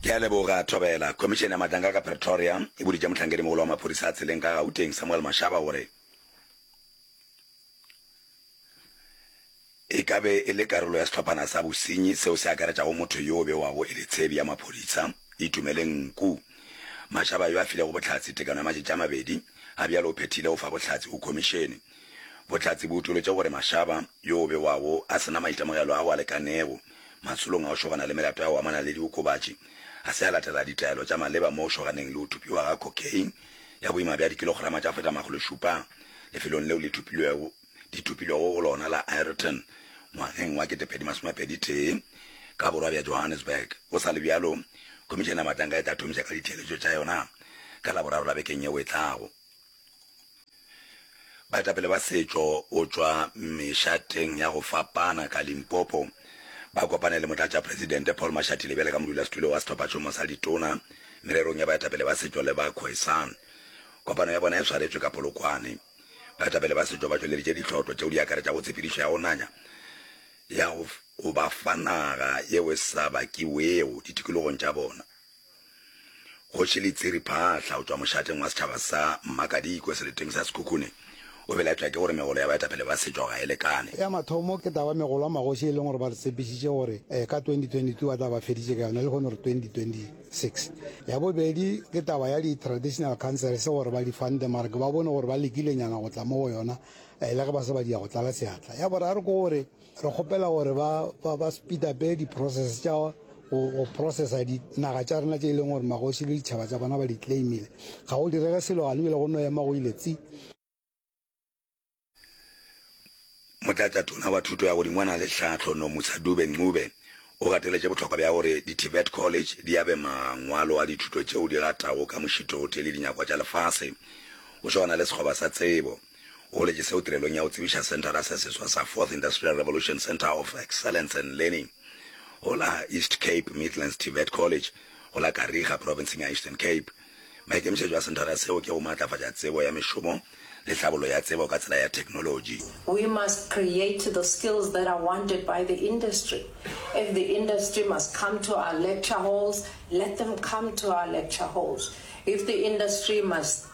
Ke a leboga, Thobela. Khomišene ya Matlankaka Pretoria e boditše mohlankedi-mogolo wa maphodisa a tseleng ka Gauteng Samuel Mashaba gore e ka be e le karolo ya sehlophana sa bosenyi seo se akaretšago motho yo o bewago e le tshebi ya maphodisa, Itumeleng Nku. Mashaba yo a filego Bohlatse tekano ya matšatši a mabedi a bjalo o phethile go fa bohlatse go khomišene. Bohlatse bo utoletše gore Mashaba yo o bewago a se na maitemogelo ao a lekanego Matsholong a go šogana le melato ya go amana le diokobatši, ga se a latela ditaelo tša maleba mo go šoganeng le go thupiwa ga cocaine ya boima bja dikilograma tša feta makgolo šupa lefelong leo le thupilwego di thupilwego go lona la Ireton ngwageng wa ketepedi masome pedi tee ka borwa bja Johannesburg. Go sa le bjalo, Khomišene ya Matanka e tla thomiša ka ditheeletšo tša yona ka Laboraro la bekeng yeo e tlago. Baetapele ba setšo o tšwa mešateng ya go fapana ka Limpopo ba kopane le Motlatšapresidente Paul Mashatile bjale ka modulasetulo wa Sehlophatšhomo sa Ditona mererong ya baetapele ba setšo le ba Khoisan. Kopano ya bona e swaretšwe ka Polokwane. Baetapele ba setšo ba tšweleditše ditlhotlo tšeo di akaretšago tshepedišo ya go nanya ya go ba fa naga yeo e sa bakiwego ditikologong tša bona, Kgoši Letsiri Phaahla go tšwa mošateng wa setšhaba sa Mmakadikwe seleteng sa Sekhukhune o belaetšwa ke gore megolo ya baetapele ba setšo ga e lekane. Ya mathomo ke taba ya megolo a magoši e leng gore ba re tshepišitše gore ka 2022 ba tla ba feditše ka yona lehono re 2026. Ya bobedi ke taba ya di traditional councils gore ba di fande mara ke ba bone gore ba lekilenyana go tla mo go yona le ge ba se ba di ya go tlala seatla. Ya boraro ke gore re kgopela gore ba ba ba speeda be di process tša go processa dinaga tša rena tše e leng gore magoši le ditšhaba tsa bona ba di claimile ga go direge selo gane bile go no ema go ile tsi motlatsa tona wa thuto ya godimo wa na le tlhatlho no musadube ncube o gateletše botlhokwa bja gore di-tibet college di yabe mangwalo a dithuto tšeo di ratago ka mošithote le dinyakwa tša lefase go swana le sekgoba sa tsebo O goletše seo tirelong ya go tsebiša Senthara se Seswa sa Fourth Industrial Revolution Centre of Excellence and Learning go la East Cape Midlands TVET College go la Kariega, profenseng ya Eastern Cape. Maikemišetšo a senthara seo ke go maatlafatša tsebo ya mešomo le tlhabollo ya tsebo ka tsela ya theknolotši. We must create the skills that are wanted by the industry. If the industry must come to our lecture halls, let them come to our lecture halls. If the industry must.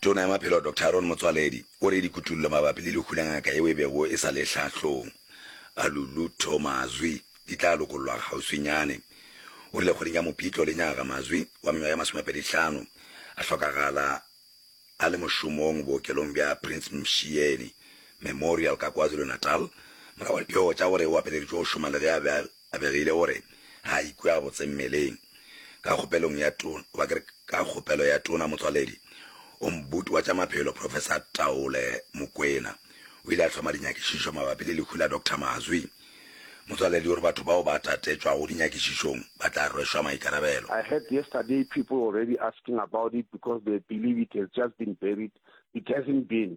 Tona ya Maphelo Doctor Aaron Motsoaledi o re dikutollo mabapi le lehu la ngaka yeo e bego e sa le hlahlong a Lulutho Mazwi di tla lokollwa kgauswinyane. O rile kgweding ya Mopitlo lenyaga Mazwi wa mengwaga ya masomepedi hlano a hlokagala a le mošomong bookelong bja Prince Mshiyeni Memorial ka KwaZulu-Natal morago ga dipego tša gore o apeleditšwe go šoma le ge a be a A begile gore ga a ikwe gabotse mmeleng. Ka kgopelong ya tona, goba ke re, ka kgopelo ya tona motswaledi o mbuti wa tša maphelo, Professor Taole Mokwena, o ile a hloma dinyakišišo mabapi le lehu la Doctor Mazwi. Motswaledi o re batho bao ba tatetšwago dinyakišišong ba tla rwešwa maikarabelo. I heard yesterday people already asking about it because they believe it has just been buried, it hasn't been.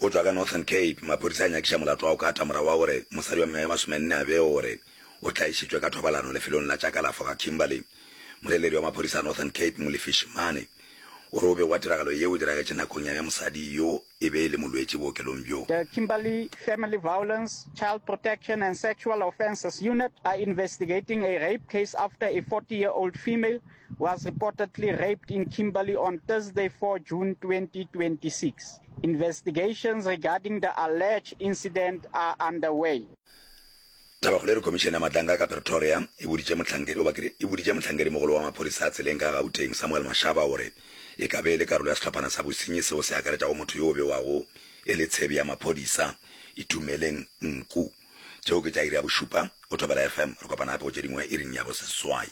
o tšwa ka Northern Cape. Maphodisa a nyakiša molato wa go kata morago wa gore mosadi wa mengwaga ye masomenne a bege gore o tlaišitšwe ka thobalano lefelong la tša kalafo ga Kimberley. Moleledi wa maphodisa a Northern Cape, Molefi Shimane, o re o bego wa tiragalo yeo o diragetše nakong ya ge mosadi yo e be e le molwetši bookelong bjo. The Kimberley Family Violence, Child Protection and Sexual Offences Unit are investigating a rape case after a 40-year-old female was reportedly raped in Kimberley on Thursday, 4 June 2026. Investigations regarding the alleged incident are underway. Tabakgolo e re Khomišene ya Matlankga ka Pretoria e boditše mohlankedi goba kere e boditše mohlankedi-mogolo wa maphodisa a tseleng ka Gauteng, Samuel Mashaba gore e ka be e le karolo ya sehlophana sa bosenyi seo se akaretšago motho yo o bewago e le tshebi ya maphodisa, Itumeleng Nku. Tšeo ke tša iri ya bošupa. Go Thobela FM. Re kopana gape go tše dingwe iring ya boseswai.